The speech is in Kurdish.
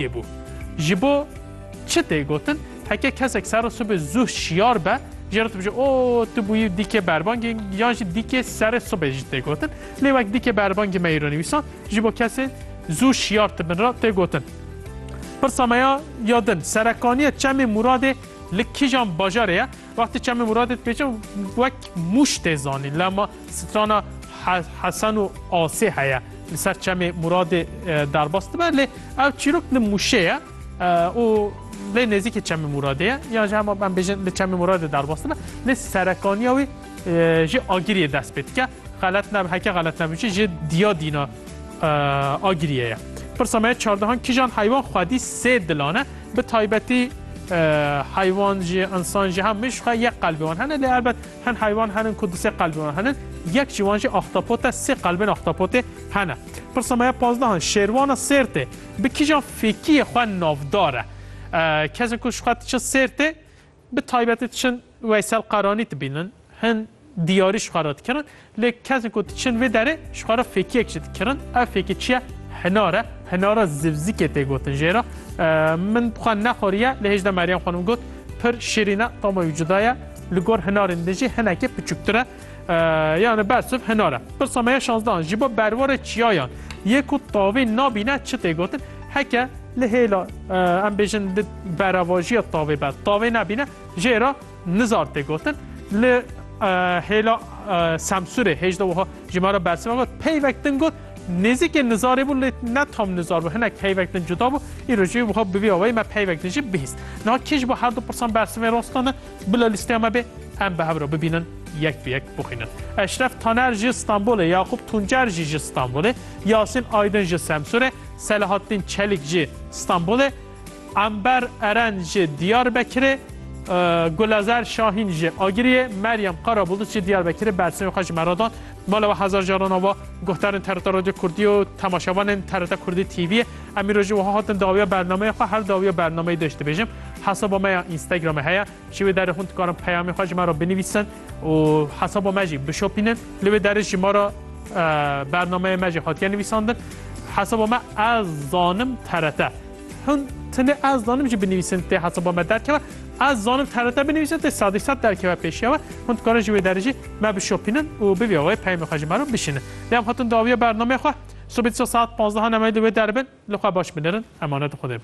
Yê bû. Ji bo çi tê gotin? Heke kesek serra sibê zû şiyar be, jê re dibêje o tu bûyî dîkê berbangê yan jî dîkê serê sibê jî tê gotin. Lê wek dîkê berbangê me îro nivîsan ji bo kesên zû şiyar tibin re tê gotin. Pirsa me ya ya din serekaniyê Çemê Mûradê li kîjan bajarê ye? Wextê Çemê Mûradê dibêje wek Mûş tê zanîn lê ma Strana Hesen û Asê heye li ser çemê Muradê derbas dibe lê ev çîrok li Mûşê ye û lê nêzîkê çemê Muradê ye yan ji hema em bêjin li çemê Muradê derbas dibe lê serekaniya wî ji Agiriyê dest pê dike xelet ne heke xelet nebûçi ji diya dîna Agiriyê ye. Pirsa me çardehan kijan heywan xwedî sê dilane bi taybetî heywan jî insan jî hemiş xwe yek qelbê wan hene lê elbet Hin heywan henin ku du sê qelbên wan henin, yek ji wan jî ahtapot e, sê qelbên ahtapotê hene. Pirsa me ya pazdehan, Şêrwana Sêrtê bi kîjan fêkiyê xwe navdar e? Kesên ku ji xwe diçin Sêrtê bi taybetî diçin Weysel Qaranî dibînin, hin diyarî ji xwe re dikirin. Lê kesên ku diçin vê derê ji xwe re fêkiyek jî dikirin. Ev fêkî çi ye? Hinar e. Hinara zivzikê tê gotin jê re. Min xwe nexweriye lê hêj de Meryem xanim got pir şirîn e tama wî cuda ye. Li gor hinarên din jî hinekê piçûktir e. Yani bersiv hinar e. Pirsa me ya şanzdehan ji bo berwarê çiyayan yê ku tavê nabîne çi tê gotin? Heke li hêla em bêjin di berevajiya tavê be tavê nebîne jê re Nizar tê gotin li hêla Semsûrê hêj de wiha ji me re bersiva got peyvek din got nêzîkê nizarê bû lê ne tam nizar bû hinek peyvek din cuda bû îro jî wiha bi vî awayî me peyvek din jî bihîst. Niha kî ji bo her du pirsan bersivên rostan e bila lîsteya me bê em bi hev re bibînin yek bi yek bixwînin. Eşref Taner ji Stenbolê, Yaqûb Tuncer jî ji Stenbolê, Yasîn Aydin ji Semsûrê, Selahattîn Çelîk jî Stenbolê, Ember Eren ji Diyarbekirê, Gulezer Şahîn ji Agiriyê, Meryem Karabulût ji Diyarbekirê bersivên xwe ji me re dan. Bi mala we hezar caran ava guhdarên TRT Radyo Kurdî û temaşevanên TRT Kurdî TV'ê. Em îro jî wiha hatin dawiya bernameyê xwe, her dawiya bernameyê deş dibêjim. Hesaba me ya Instagramê heye. Ji wê derê hûn dikarin peyamê xwe ji me re binivîsin û hesaba me jî bişopînin. Li wê derê ji me re bernameyê me jî hatiye nivîsandin. Hesaba me ez zanim TRT. Hûn tunê ez zanim jî binivîsin tê hesaba me derkeve. Ez zanim TRT binivîsin tê sedî sed derkeve pêşiya we. Hûn dikarin ji wê derê jî me bişopînin û bi vî awayê peyamê xwe ji me re bişînin. Lê em hatin dawiya bernameyê xwe. Sibê dîsa saet panzdeh a nemeyê li wê derbin. Li xwe baş binirin. Emanet Xwedê bin.